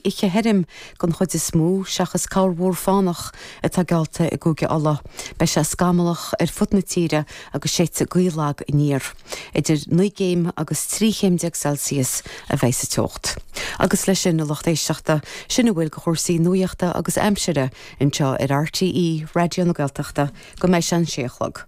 oíche thirim, den chuid is mó, seachas corrmhúr fánach atá geallta i gCúige Uladh, beidh sé scamallach ar fud na tíre agus séidfidh gaoth lag aniar. Idir naoi gcéim agus trí chéim déag Celsius a bheidh sa teocht. Agus leis sin, a lucht éisteachta, sin a bhfuil de chúrsaí nuaíochta agus aimsire anseo ar RTÉ Raidió na Gaeltachta go mbeidh sé an sé a chlog.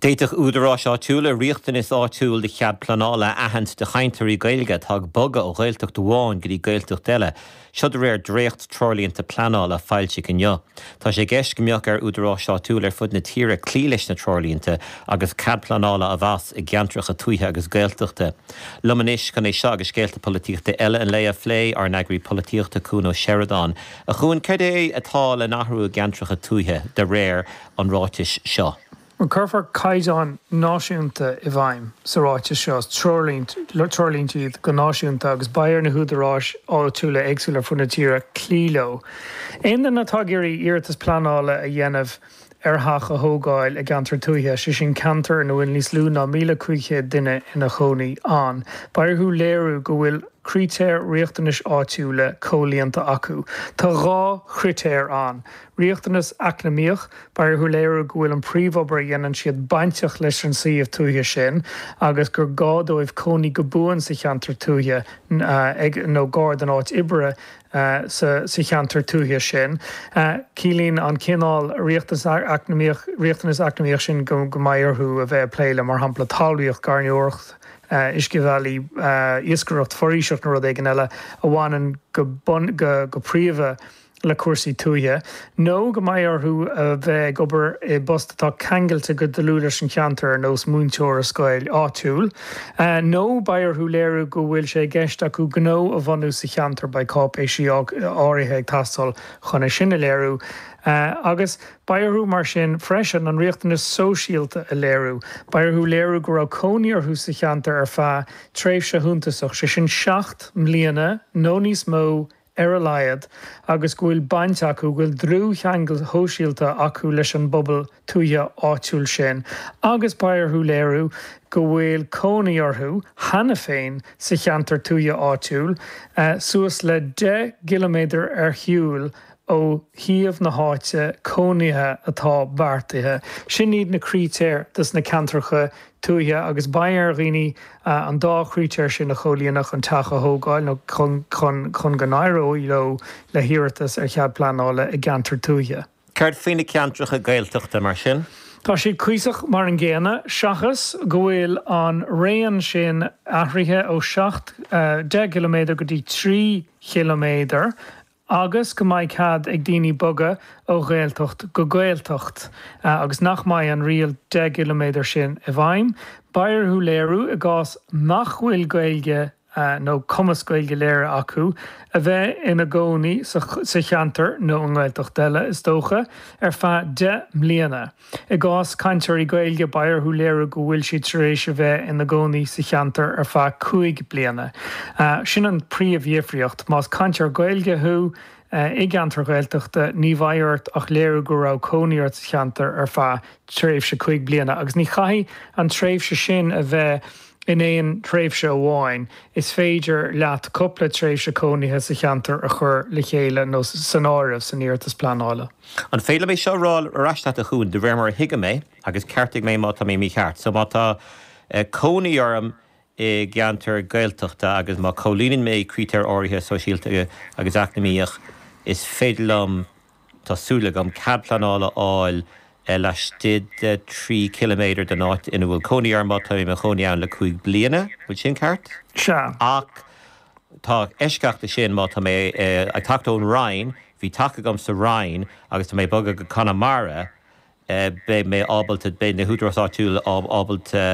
D'fhéadfadh údaráis áitiúla riachtanas áitiúil do chead pleanála a aithint do chainteoirí Gaeilge atá ag bogadh ó Ghaeltacht amháin go dtí Gaeltacht eile, seo de réir dréacht-treoirlínte pleanála a foilsíodh inniu. Tá sé i gceist go mbeadh ar údaráis áitiúla ar fud na tíre cloí leis na treoirlínte agus cead pleanála á mheas i gceantracha tuaithe agus Gaeltachta. liom anois chun é seo agus scéalta polaitíochta eile an lae a phlé, ár n-eagraí polaitíochta Cuan Ó Seireadáin, a Chuain, cad é atá le n-athrú i gceantracha tuaithe de réir an ráitis seo? Cuirfear caighdeáin náisiúnta i bhfeidhm sa ráiteas seo, treoirlínte iad go náisiúnta agus beidh ar na húdaráis áitiúla éagsúla ar fud na tíre cloí leo. Aon duine atá ag iarraidh iarratas pleanála a dhéanamh ar theach a thógáil i gceantar tuaithe, sé sin ceantar ina bhfuil níos lú ná 1,500 duine ina chónaí ann, beidh orthu léiriú go bhfuil critéir riachtanais áitiúla comhlíonta acu. Tá dhá chritéar ann, Riachtanas eacnamaíoch, Beidh orthu léiriú go bhfuil an príomhobair a dhéanann siad bainteach leis an suíomh tuaithe sin agus gur gá dóibh cónaí go buan sa cheantar tuaithe nó gar don áit oibre sa cheantar tuaithe sin. Ciallaíonn an cineál riachtanas eacnamaíoch sin go mbeidh orthu a bheith ag plé le, mar shampla, talmhaíocht, gairneoireacht, uiscebhealaí, iascaireacht, foraoiseacht nó rud éigin eile a bhaineann go príomha le, le cúrsaí tuaithe, nó go mbeidh orthu a bheith ag obair i bpost atá ceangailte go dlúth leis an cheantar, ar nós múinteoir i scoil áitiúil, nó beidh orthu léiriú go bhfuil sé i gceist acu gnó a bhunú sa cheantar, beidh cáipéisí áirithe ag teastáil chun é sin a léiriú, agus beidh orthu mar sin freisin an riachtanas sóisialta a léiriú, beidh orthu léiriú go raibh cónaí orthu sa cheantar ar feadh tréimhse shuntasach, sé sin seacht mbliana nó níos mó ar a laghad, agus go bhfuil baint acu, go bhfuil dlúthcheangal shóisialta acu leis an bpobal tuaithe áitiúil sin agus beidh orthu léiriú go bhfuil cónaí orthu cheana féin sa cheantar tuaithe áitiúil, suas le 10 gciliméadar ar shiúil ó shuíomh na háite cónaithe atá beartaithe. Sin iad na critéir dos na ceantracha tuaithe agus beidh ar dhaoine an dá chritéar sin a chomhlíonadh chun teach a thógáil nó chun go n-éireoidh leo le hiarratas ar chead pleanála i gceantar tuaithe. Céard faoi na ceantracha Gaeltachta, mar sin? Tá siad cuíosach mar an gcéanna, seachas go bhfuil an raon sin athraithe ó 10 km go dtí 3 km. agus go mbeidh cead ag daoine bogadh ó Ghaeltacht go Gaeltacht agus nach mbeidh an riail 10 gciliméadar sin i bhfeidhm, beidh orthu léiriú, i gcás nach bhfuil Gaeilge nó cumas Gaeilge léirithe acu, a bheith ina gcónaí sa cheantar, nó i nGaeltacht eile, is dócha, ar feadh 10 mbliana. I gcás cainteoirí Gaeilge, beidh orthu léiriú go bhfuil siad tar éis a bheith ina gcónaí sa cheantar ar feadh cúig bliana. Sin an príomhdhifríocht. Más cainteoir Gaeilge thú i gceantar Ghaeltachta, ní bheidh ort ach léiriú go raibh cónaí ort sa cheantar ar feadh tréimhse cúig bliana, agus ní chaithfidh an tréimhse sin a bheith in aon tréimhse amháin, is féidir leat cúpla tréimhse cónaithe sa cheantar a chur le chéile nó san áireamh san iarratas pleanála. An féidir liom é seo a rá ar ais leat, a Chuan, de réir mar a thuigim é, agus ceartaigh mé má tá mé mícheart. So má tá cónaí orm i gceantar Gaeltachta agus má chomhlíonann mé critéir áirithe sóisialta agus eacnamaíochta, is féidir liom, tá súil agam, cead pleanála a fháil laistigh de trí chiliméadar den áit ina bhfuil cónaí orm má tá mé i mo chónaí ann le cúig bliana. An bhfuil sin ceart? Sea. Ach Tá eisceacht ansin, má tá mé ag teacht ón Rinn, bhí teach agam sa Rinn agus tá mé ag bogadh go Conamara, beidh mé ábalta, beidh na húdaráis áitiúil ábalta,